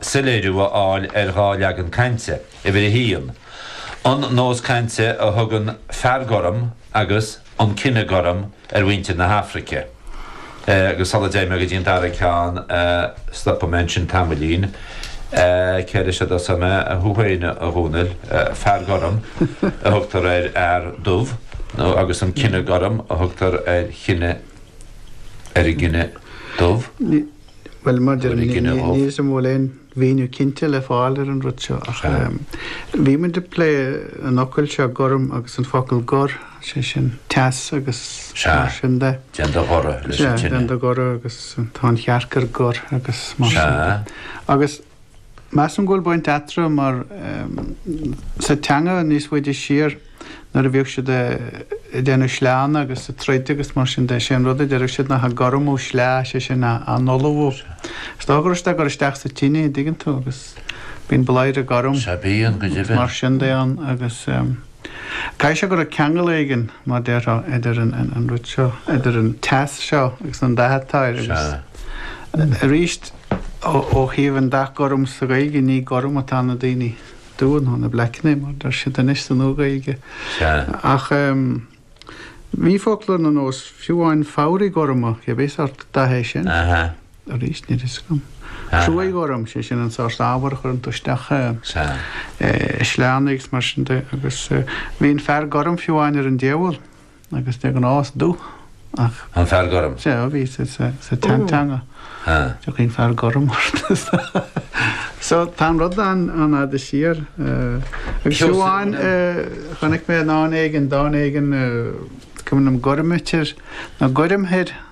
soiléiriú a fháil ar dhá leagan cainte, uimhir a haon, an nós cainte a thugann 'fear gorm' agus 'an cine gorm' ar mhuintir na hAfraice, agus sula dtéigh mé go dtí an dara ceann, stopfaidh mé ansin tamaillín, céard is é do thuairim, thú féin, a Dhomhnaill, 'fear gorm' a thugtar ar fhear dubh, nó, agus 'an cine gorm' a thugtar ar chine, ar an gcine dubh? Bhuel, maidir leis níl a fhios agam an bhfuil aon mhíniú cinnte le fáil ar an rud seo ach bhí muid ag plé an fhocail seo gorm agus an focal gor, sé sin teas agus mar sin de. Sea, déan do ghoradh leis an tine. Sea, déan do ghoradh agus tá an chearc ar gor agus mar sin de. Sea. Measaim go bhfuil baint eatarthu mar sa teanga níos faide siar nuair a bhíodh siad ag déanamh sleánna agus ag troid agus mar sin de, sé an rud a deireadh siad nach ea 'gormú sleá', sé sin a n-ullmhú. Is dócha go raibh siad á gcur isteach sa tine, an dtuigeann tú, agus bíonn bladhaire gorm agus mar sin de ann agus caithfidh sé go raibh ceangal éigin, mar déarfá, idir an rud seo, idir an teas seo agus an dath atá air agus aríst, Ó thaobh an dath gorm sa Ghaeilge, ní gorm atá na daoine dubha nó na bleaiceanna mar deir siad anois sa Nua-Ghaeilge. Ach bhí focla ar nós fiú amháin fabhraí gorma, cibé sort dath é sin. Arís, níl a fhios agam. Cruaidh ghorm, sé sin an sort ábhar a chuireann tú isteach i sleánna agus mar sin de agus bhí an fear gorm fiú amháin ar an diabhal. Agus de ghnáth is dubh ach. An fear gorm? Sea, a bhí sa tseanteanga. Tiocfaidh an fear gorm ort. So tá an rud an-fhada siar. Agus amháin chonaic mé in dán éigin, dán éigin, cuimhnim Gormaitir nó Goirmthir.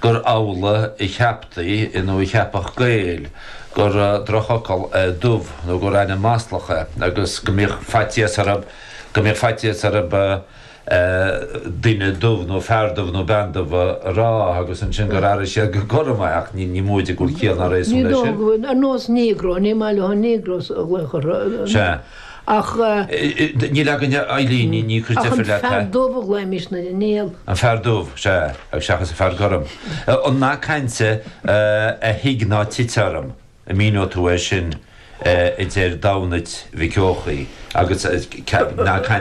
gur amhlaidh a cheaptaí nó a cheapfadh Gaeil go raibh drochfhocal é 'dubh' nó gur ainm maslach é agus go mbíodh faitíos orthu go mbíodh faitíos orthu 'duine dubh' nó 'fear dubh' nó 'bean dubh' a rá agus ansin gur athraigh siad go gorm é ach ní móide go bhfuil ciall ná réasún leis sin. Ar nós 'Negro', ní maith leo 'Negros' a ghlaoch orthu. Ach. Níl fhios againn, a Eileen, níl mé ag cur deifir leat, a. Ach an fear dubh a ghlaoimís nuair a níl. An fear dubh, sea, agus seachas an fear gorm. An nath cainte A thig ná tit orm, an míneodh tú é sin, a deir Damhnait Mhic Eochaidh, agus nath cainte.